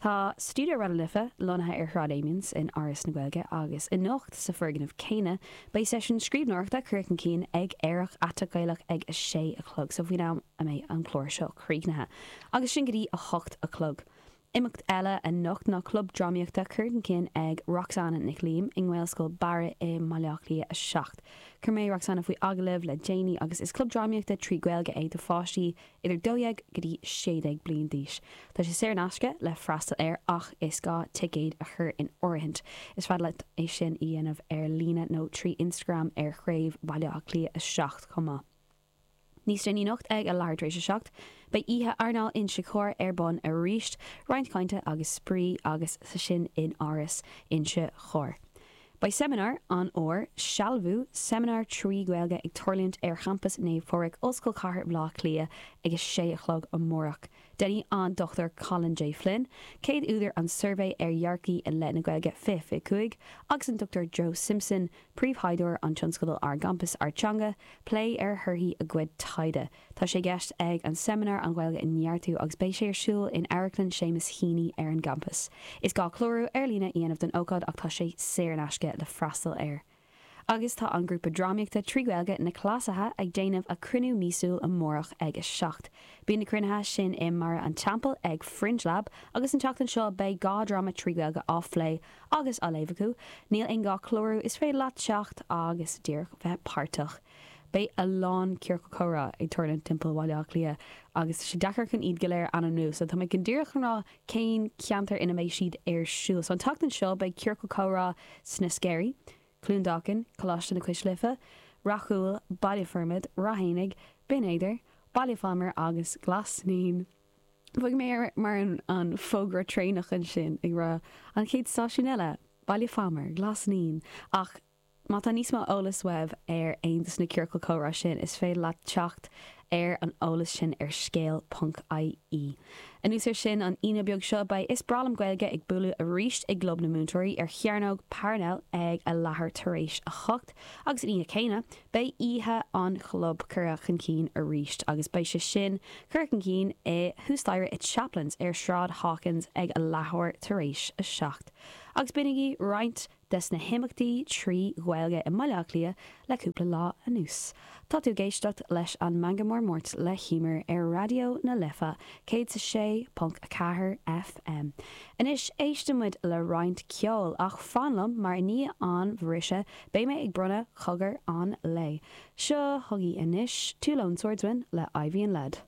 Tá Stiúideo Raidió Life lonnaithe ar Shráid Amiens in Áras na Gaeilge agus anocht, sa foirgneamh céanna, beidh seisiún scríbhneoireachta curtha chun cinn ag Aerach Aiteach Gaelach ag a sé a chlog, so faoin am a mbeidh an clár seo críochnaithe, agus sin go dtí a hocht a chlog. Imeacht eile anocht ná club drámaíochta curtha chun cinn ag Roxanna Nic Liam i nGaelscoil Bharra i mBaile Átha Cliath 7. Chuir mé Roxanna faoi agallamh le déanaí agus is club drámaíochta trí Ghaeilge é do pháistí idir dó dhéag go dtí sé déag bliain d'aois. Tá sé saor in aisce le freastal air ach is gá ticéad a chur in áirithint. Is féidir leat é sin a dhéanamh ar líne nó trí Instagram ar Chraobh Bhaile Átha Cliath 7 chomh maith. Níos déanaí anocht ag a leathuair tar éis a seacht, beidh oíche airneáil Inse Chór ar bun arís, roinnt cainte agus spraoi agus sin in Áras Inse Chór. Beidh seimineár, an Fhómhair, Sealbhú, seimineár trí Ghaeilge ag tarlúint ar champas Naomh Phádraig, Ollscoil Chathair Bhleá Cliath ag a 6 a chlog amárach. Déanfaidh an Dr Colin J. Flynn, céad údar An Suirbhé ar Dhearcthaí i leith na Gaeilge 2025 agus an Dr Joe Simpson, príomhthaighdeoir an tionscadail Ár gCampas, Ár dTeanga, plé ar thorthaí a gcuid taighde. Tá sé i gceist ag an seimineár an Ghaeilge a neartú agus beidh sé ar siúl in Amharclann Seamus Heaney ar an gcampas. Is gá clárú ar líne a dhéanamh don ócáid ach tá sé saor in aisce le freastal air. Agus tá an grúpa drámaíochta trí Ghaeilge, Na Cleasaithe, ag déanamh a cruinniú míosúil amárach ag a seacht. Bíonn na cruinnithe sin i mBarra an Teampaill ag Fringe Lab agus an tseachtain seo beidh dhá dráma trí Ghaeilge á phlé agus á léamh acu. Níl aon gá clárú, is féidir leat teacht agus díreach bheith páirteach. Beidh a lán ciorcal comhrá ag tarlúint timpeall Bhaile Átha Cliath agus tá sé deacair chun iad go léir a ainmniú so tá mé chun díreach chun rá cén ceantar ina mbeidh siad ar siúl. So an tseachtain seo beidh ciorcal comhrá sna Sceirí, Cluain Dolcáin, Coláiste na Cois Life, Ráth Cúil, Baile Formaid, Ráth Eanaigh, Binn Éadair, Baile Phámar agus Glas Naíon. Beidh mé ar mar an fógra traenach ansin ag rá an chéad stáisiún eile, Baile Phámar, Glas Naíon ach Má tá níos mó eolais uaibh ar aon des na ciorcail comhrá sin, is féidir leat teacht ar an eolas sin ar scéal ponc ie. Anuas ar sin, an Aoine beag seo, beidh Is Breá Liom Gaeilge ag buaileadh arís i gClub na Múinteoirí ar Chearnóg Parnell ag a leathuair tar éis a hocht agus an oíche céanna, beidh oíche an Chlub curtha chun cinn arís agus beidh sé sin curtha chun cinn i thuas staighre i Chaplins ar Sráid Hawkins ag a leathuair tar éis a seacht agus b'in agaibh roinnt des na himeachtaí trí Ghaeilge i mBaile Átha Cliath le cúpla lá anuas. Tá tú ag éisteacht leis an Meangadh Mór Máirt le hÉimear ar Raidió na Life 106.4 FM. Anois éistfidh muid le roinnt ceoil, ach fan liom, mar i ndiaidh an bhriseadh beidh mé ag bronnadh cogar an lae. Seo chugaibh anois Two Lone Swordsmen le Ivy and Lead.